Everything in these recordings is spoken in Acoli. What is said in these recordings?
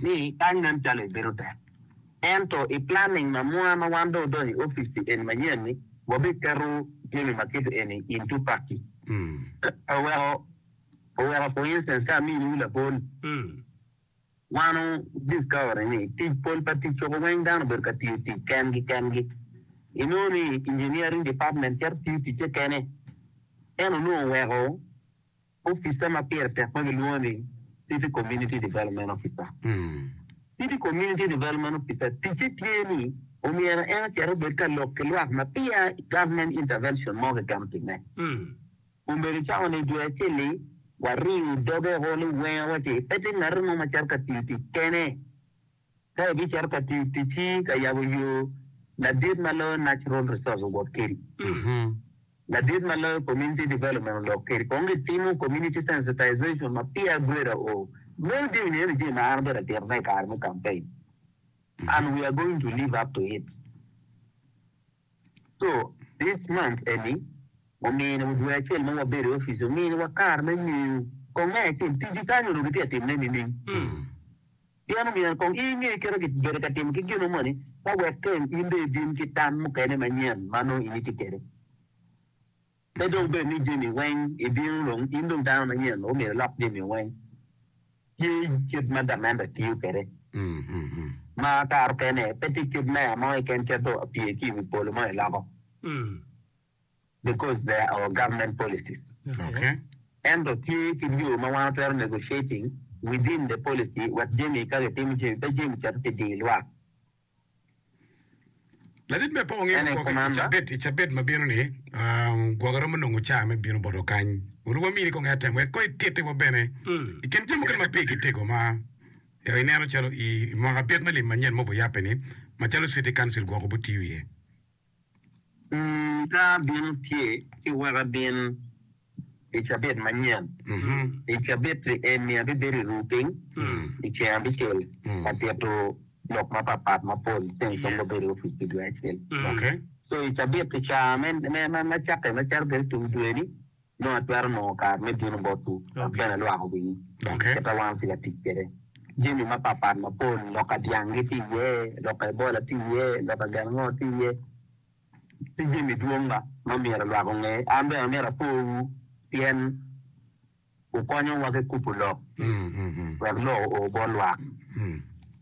ni kany nen calo ebedo tek. Ento i planning ma mwa ma wan dong odonyo i opic-ci eni manyen-ni, wabiketo jami ma kit eni into pakci. Oweko, oweko for instance ka aminiwu lapol, wan wu discovery ni tic pol pa tic cogo weng dano obedo ka tiyo tic kengi kengi. Inongo ni engineering department cito tiyo ticce kene. En onongo oweko Opica ma pire tek ma gilwongo ni City Community Development Officer. City Community Development Officer ticce tye ni omyero en ocit obed ka lok ki lwak ma peya government intervention mo keken otimme. Omege cako ni, Dwe acel-li, wariyo doge woko liwenga wa ci pe tye ngat mo ma cito ka tiyo tic kene. ka ibicito ka tiyo ticci ka yabo yo ladit ma loyo Natural Resource owot kedi, ladit ma loyo Community Development olok kedi kong gitimo Community Sensitization ma peer grader oo meno dini nino jami ma an abedo atito ne i kare me campaign and we are going to live up to it. So, this month eni omino dwe acel ma wabedo i office ominiwa kare me ngeyo kong me acel tiji kany onongo gitye ka timme nining. Pien omyero kong i nge kit ma kibedo ka timo ki gino moni ka wek keng in dong ibin ki tam mukene manyen ma nongo in itye kede. Pe dong bed ni jami weng ibino dong in dong dano manyen ma omyero ilok jami weng. Tye kit ma gamente tiyo kwede ma kare okene pe tye kit meya mo keken keto apye ki iwi polo mo iloko because they are our government policies. Ento tye kit yo ma wan watwero negotiating within the policy wek jami ka gitimo jami pe jami cito ki diyo lwak. Ladit me apoko ngec gwokke i cabit i cabit ma bino-ni. Gwokke romo nongo caa me bino boto kany. Olu wamini kong atem wek kong itittiwa bene i kin jami mukene ma pigi tego ma yaka ineno calo i mwaka abit me lim manyen ma wubiyabbe-ni, macalo City Council gwok obitiyo iye. Ii, Ka abino tye ci wek abin i cabit manyen. I cabit-ti eni abibedo i rupiny i ceng abicel ka tito lok mapatpat mapol ceng kong wabedo i opic pi dwe acel. So i cabit-ti ca me cakke macalo bedo tung dwe-ni Nongo atwero nongo kare me bino botwu dok bene alwako wii kit a wano ci ka tic kwede. Jami mapatpat mapol, loka dyanggi tye iye, loka ebola tye iye, loka galangor tye iye, ki jami dwong ma myero lwak onge. An bene amyero akowu pien wukonyowa ki kubo lok wek lok oo bot lwak.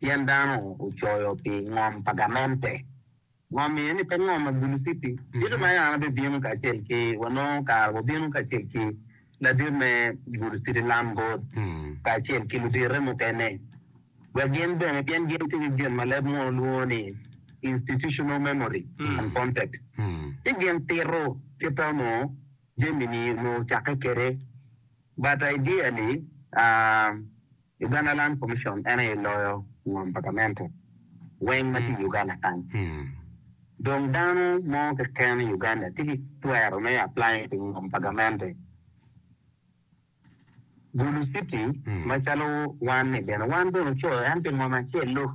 Pien dano ocoyo pi ngom pa gamente, ngom iye ni pe ngom ma bulu titi, tito ma yara bibino kacel ki, wa nongo kare wa bino kacel ki ladit me gulu titi lam bot kacel ki ludite mukene, wek gin bene, pien gin tye ki gin ma leb munu lwongo ni institutional memory and context, ci gin tito kita onongo jami ni onongo ocakke kede, but idea ni, ah. Uganda Land Commission en aye loyo ngom pa gamente weng ma tye i Uganda kany. Dong dano mo keken i Uganda tye ki twero me apply pi ngom pa gamente. Gulu City macalo wan ni bene wan bene ocoyo en pi ngom acel lok.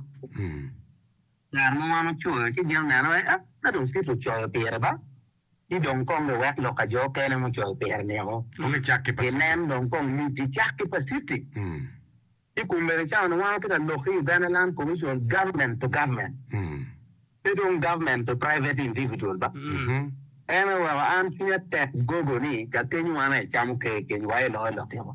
Kare ma wan ocoyo ci gin oneno ni ah ka dong city ocoyo pire ba. ci dong kong giwek lok ka jo okene mucoyo pire niko. Kong icak ki Pacific. Ginen dong kong lic icak ki Pacific. Ci kun bene ca onwango ki ta lok ki Uganda Land Commission government to government, pe dong government to private individual ba. En aye weko an cwinya tek gogo ni kakenywa na ecamo ker kenywa aye loyo lok yoko.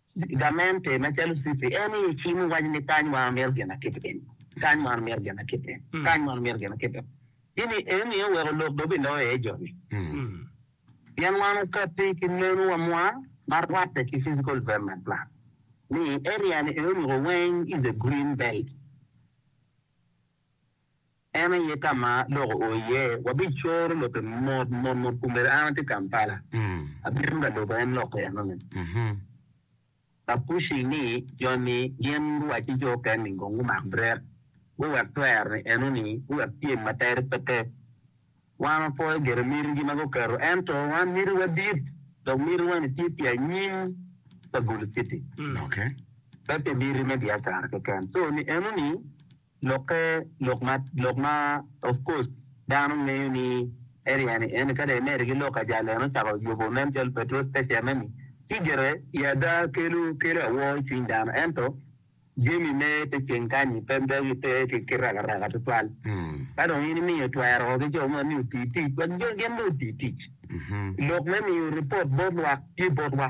Gamente macalo Cissy en i cimo waco ni kany wan omito gin akit piny, kany wan omito gin akit piny, kany wan omito gin akit piny. Gini eni oweko lok dong biloyo iye joni. Pien wan okatti ki meno wa mwa ma rwatte ki Physical Development Plan ni i area ni eni onongo weng is a green belt. En aye ka ma lok oo iye. Wabicoro lokke mot mot mot kun bene an atye Kampala. Abino ka loko en lokke enoni. Bapushi ni joni gin luwacci jo oken ni kong gumak brek guwek twer-ni enoni guwek pyem ma tere pe te. Wan wapoyo gire mitigi ma guketo ento wan mitiwa dit dok mitiwa-ni tye pi anyim pa Gulu City pe pi miti me biacara keken. So ni enoni Lok pe lok ma lok ma of course dano ngeyo ni Ariane eni ka dong imedo ki lok ajalo en ocako yubo nen calo petro special me ni ci gire i ada kelo kelo awor i cwiny dano ento jami me te ceng kanyi pe dogi pe ki raka raka tutwal ka dong in imiyo twero woko ki jo moni oti tic wek jo gin bene oti tic lok me miyo report bot lwak tye botwa.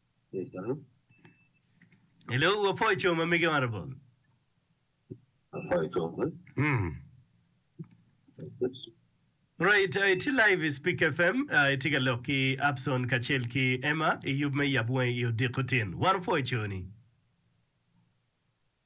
Hello, wapwoyo co ma mege honorable. Mm. Right, uh, iti live i Speak FM, uh, iti ka lok ki Abson kacel ki Emma i yub me yab wangi i odiko tin. Wan opwoyo coni.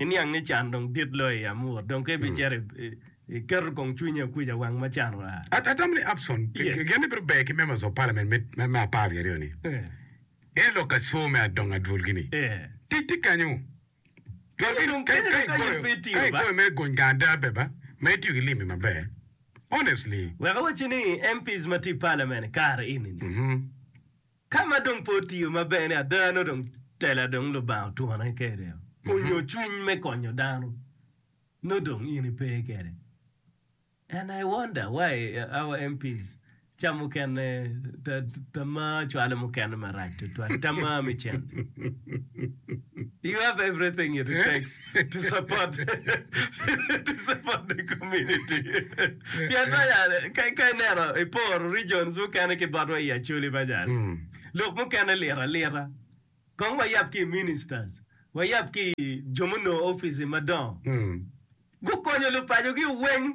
Iniang ni can dong dit loyo i amur, dong ka ibicito i keto kong cwinyi akuc awang ma can oa. Atamo ni Upson gin ni bito ber ki Members of Parliament me me apar wiye aryo ni en lok ka co me adongo adwol gi ni tic tye kanyo twero ki dong ka i goyo mere gony gang ada ber ba ma itiyo ki limbi maber honestly. Wek awacci ni MPs ma tye i Parliament kare eni ni. Ka ma dong pe otiyo ma ber-ni, ada nongo dong tela dong Lubanga otwone kede onyo cwiny me konyo dano, nongo dong in ipe kede. And I wonder why our MPs ca mukene ta tamaa cwalo mukene marac twatwal, tamaa me cente. You have everything it takes. to support to support the community pien ma yani ka ka ineno iporo regions mukene ki botwa i Acholi ma yani lok mukene lit alita kong wayab ki i ministers wayab ki i jo munongo office madongo gukonyo lupacogi weng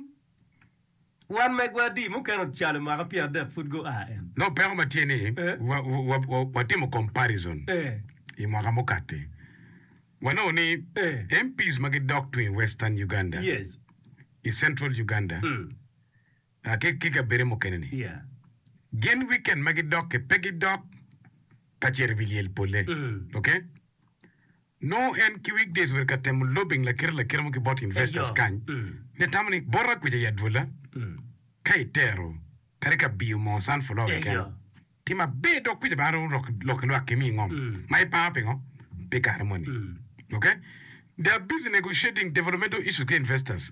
Wan megwadi mukene ocalo mwaka pyeradek pud gua en. Nongo peko ma tye ni, watimo comparison i mwaka mukati, wanongo ni MPs ma gidok tung i Western Uganda, i Central Uganda, ki kabede mukene ni, gin weekend ma gidok-ki pe gidok ka cito i wi lyel pole. Nongo en ki weekdays obedo ka temo lobbying lakite lakite mo ki bot investors kany me tamo ni bota kuca i adwola ka i tero kadi ka biyo moo sunflower keken tye maber dok kuca bene romo lok lwak kimi i ngom ma i paro pingo pi kare moni. Ok. They are busy negotiating developmental issues ki investors.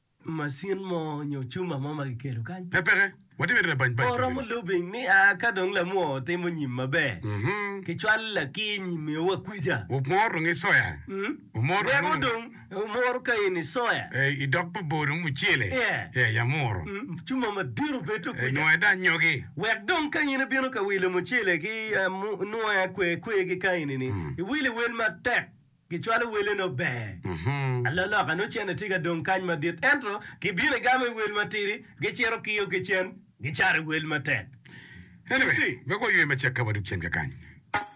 macin mo nyo cuma mo ma kiketo kany. Pe peke, watye mere labany bany Pe oromo keken. lubing ni a ka dong lamwor otimo nyim maber, Mhm. kicwalo lakiny i mewa kwica. Wumor dong isoya. Mm. Wumor dong Weko nongo. dong wumor ka in isoya. Eh, i dog pa bor dong mucele. Yeah. Yeah, ya muro. Mm, Cuma madit obedo Eh, kwica. nwoya da anyogi. Wek dong ka in ibino ka wilo mucele ki ah, mu- nwoya kwe kwe ki ka enini, iwilo iwel matek. Gicwalo wele nongo ber. Aloloka nongo cente tye ka dong kany madit, ento gibino i gamo i wel matidi, gicito kiyo ki cen, gicato i wel matek. Anyway, wek waywe macek ka wadok cen kakany.